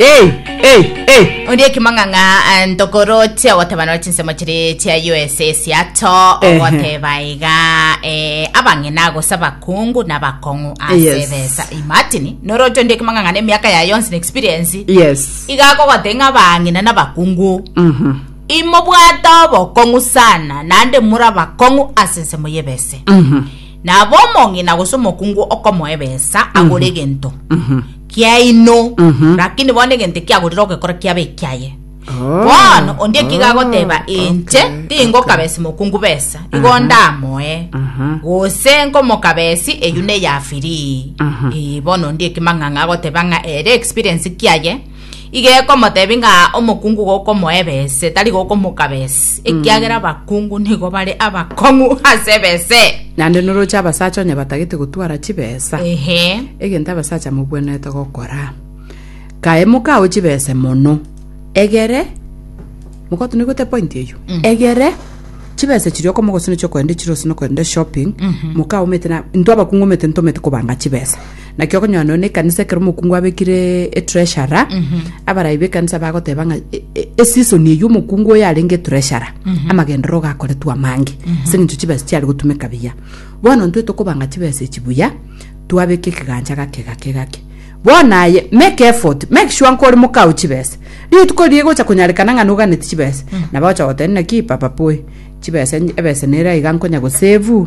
Ei, ei, ei! Ondi ekimong'ang'a eh, ntokoroche ogoteba nore chinsemo chiri chia USA esiato Ehe. ogoteba iga eh, abang'ina gose abakungu na abakong'u ase Yes. ebesa imatini noroche ondi ekimong'ang'a na emiaka ya yonsi na experience Yes. iga akogote ng'a abang'ina na abakungu Mhm. imobwate obokong'u sana naende muri abakong'u ase ensemo y'ebese Mhm. nabo omong'ina gose omokungu okomoa ebesa agore egento Mhm. kiaino, lakini bono egento ekiagorire ogekora kiabe ekiaye. Bono onde ekiga agoteba inche tingokabesi mokungu besa, igo ndamoe, gose nkomokabesi eyio neya free. Eh, bono onde ekimang'ang'a agoteba ng'a ere experience kiaye Iga ekomotebia ng'a omokungu gokomoa ebese, tari gokomoka bese, ekiagera abakungu nigo bare abakong'u ase ebese. Naende noroche abasacha onye batagete gotwara chibesa, Ehe. egento abasacha mobwenerete gokora. Kae mokao chibese mono, egere, mogoto nigo te point eyio, egere chibese chiria okomogosina chiokoenda chire ase nokoenda shopping, mokaomete na, intwe abakungu omete ntomete kobanga chibesa. Naki okonyora nonya na ekanisa ekero omokungu abekire etreasurer abarai b'ekanisa bagoteba ng'a e- e- eseason eyio omokungu oyo arenge etreasurer amagenderero gakoretwe amange ase eng'encho chibesa chiare gotumeka buya bono intwe tokobanga chibesa echi buya twabeka ekegancha gake gake gake bono aye make effort make sure nkore mokao chibesa rituko riria rigocha konyarekana ng'a noganeti chibesa nabo ogocha goteba naki papa poi chibesa ebesa nere iga nkonya gosevu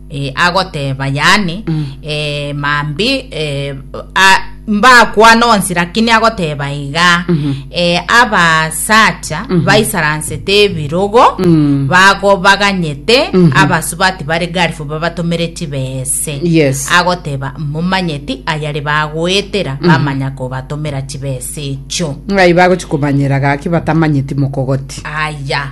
eh, agoteba yani eh, mambi eh, a- mbakwana onsi lakini agoteba iga eh, abasacha baisaransete ebirogo bago baganyete abasubati bari garifu babatomere chibese Yes. agoteba momanyeti ayari bagoetera bamanya kobatomera chibese echo ng'ai bagochikomanyera gaki batamanyeti mokogoti aya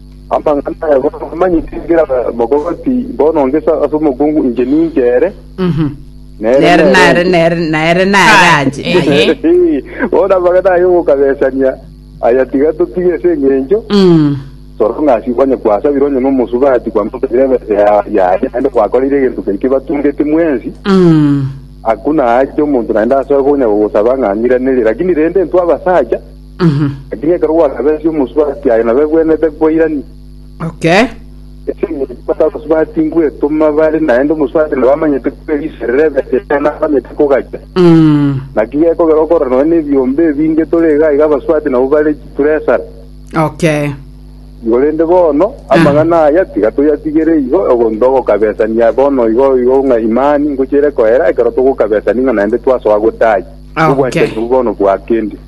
Amang'ana aya bono amanyete engira mogobe ati, Bono ngesa ase omokungu inche ninche ere, Mhm. nere Nere nere nere inche. nere nere nere Aye, anje. aye. Aye. Eh, Bono amang'ana aya ogokabesania aya tiga totige ase eng'encho Mm. sorong'asi onye kwasabire onye nomosubati kwamosabire ebesa ya- yaye naende kwakorire egento keria kibatungete mwensi Mm. hakuna haja omonto naende asoe konya gogosaba ng'a ng'iranere lakini rende intwe abasacha Lakini ekero gwakabeesia omosubati aye nabo egwenerete koirania. Okay. Ase engencho bata abasubati ngwetoma bare, naende omosubati nabo amanyete koba eriso ere rebese yaye nabo amanyete kogachia. Mm. Naki gekogera okorora nonya nebiombe ebinge tore iga iga abasubati nabo bare chipuresara. Okay. Korende bono amang'ana aya tiga toyatigere igo ogonto ogokabesania bono igo igo ng'a imani ngochiere koera ekero togokabesania ng'a naende twasoa gotaiya. Ah, Obwanchani okay. obwo bono bwakendi.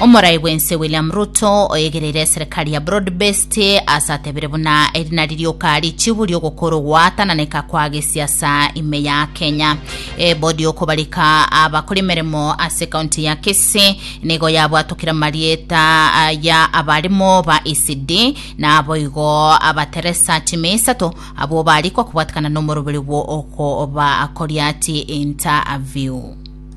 Omorai bwense William Ruto oyegereire eserekari ya broad based ase atebire buna eri nari rioka richibu riogokora ogwatananeka kwa gesiasa ime ya Kenya. Ebodi yokobarika abakora emeremo ase kaunti ya Kisii nigo yabwatokire amarieta ah, ya abarimo ba ECD na aboigo abateresa chime isato abwo barikwa kobwatekana nomoroberi bwo okoba koriati interview.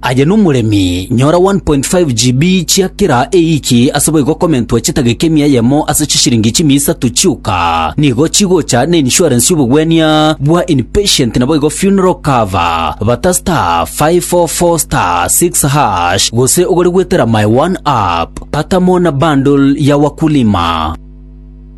Aye nomoremi, nyora 1.5 GB chia kera eiki ase boigo komentwa chitageka emia eyemo ase chisiringi chimia isato chioka. Nigo chigocha na insurance y'obogwenia bwa inpatient naboigo funeral cover. Bata *544*6# gose ogore gwetera my one app. Patamo na bundle ya wakulima.